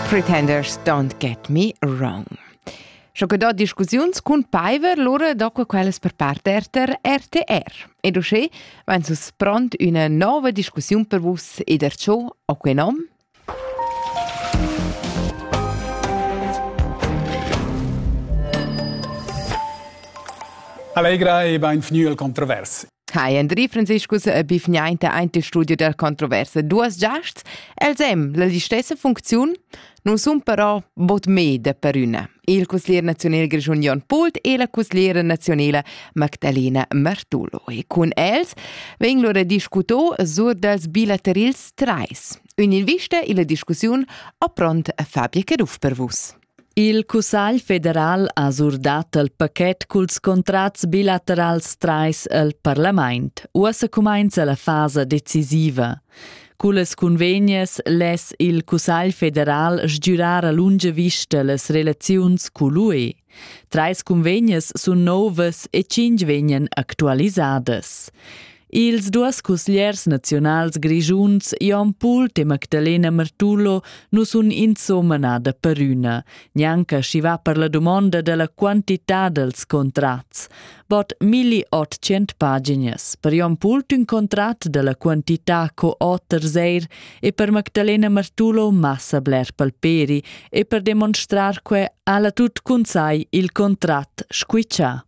Pretenders don't get me wrong. Scho che do discussiuns cun Paiver lura do que quellas per part RTR RTR. Ed uschè van sus pront üna nova discussiun per vus ed er ciò o que nom? Allegra e benvenu al Kontrovers. Hi Andri Franziscus e bifgnainta aint il studio der controversa. Duas giasts, els hem la stessa funcziun, nun sun però bod meda per üna. Il cuslier nazional grischun Jon Pult e la cusliera nazionala Magdalena Martulo. E cun els vegn lura discuto sur dals bilaterils trais. Ün'invista illa discussiun ho pront Fabia Caduff per vus. Il Cussagl federal ha surdat il paquet culs contrats bilaterals trais el parlament. Uossa cumainza la fasa decisiva. Cullas cunvegnas less il Cussagl federal sgürar a lunga vista las relaziuns cul UE. Trais cunvegnas sun novas e tschinch vegnan actualisadas. Ils duas cusgliers naziunals grischuns Jon Pult e Magdalena Martullo nu sun insomma nada perüna, gnanca schi va per la dumonda della quantità dels contrats. Bod 1800 paginas, per Jon Pult ün contrat della quantità co oters eir e per Magdalena Martullo massa bler palperi e per demonstrar que ha la tut cun sai il contrat squiccià.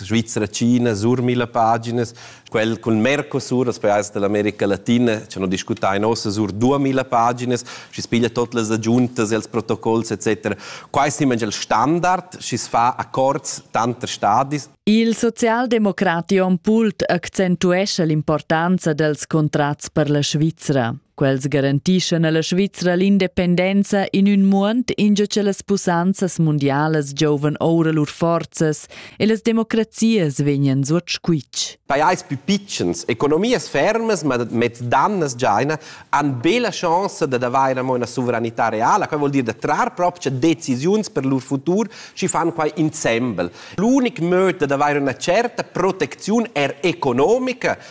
Svizra, China, sur mille paginas, quel cun Mercosur, das Preis dell'America Latina, ci hanno discutato in ossa sur 2000 paginas, ci spiglia tutte le aggiunte e i protocolli, eccetera. Questo è il standard, ci fa accords tanti stadis. Il socialdemocrati on pult accentuesce l'importanza dels contrats per la Svizzera. Quels garantischan alla Svizra l'independenza in ün muond ingio che las pussanzas mundialas giovan oura lur forzas e las democrazias vegnan suot squitsch. Pajais pü pitschens, economias fermas ma mez dannas giaina, han be la chance dad avair amo üna suvranità reala, quai vuol dir da trar propcha decisiuns per lur futur, schi fan quai insembel. L'unic möd dad avair üna certa protecziun er economica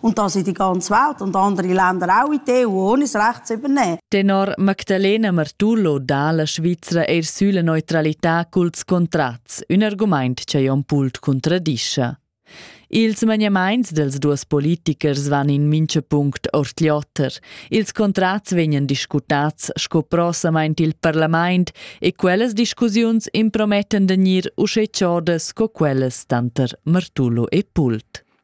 Und das in die ganze Welt und andere Länder auch in die EU ohne das Recht zu übernehmen. Tenor Magdalena Martullo dà la Svizra er sulla neutralità culs contrats, un argument che Jon Pult contradisce. Ils maniamaints dels duas politichers van in mincha punct ord l'oter. Ils contrats vegnan discutats sco prosamaint il parlament e quellas discussiuns impromettan da gnir usché chodas sco quellas tanter Martullo e Pult.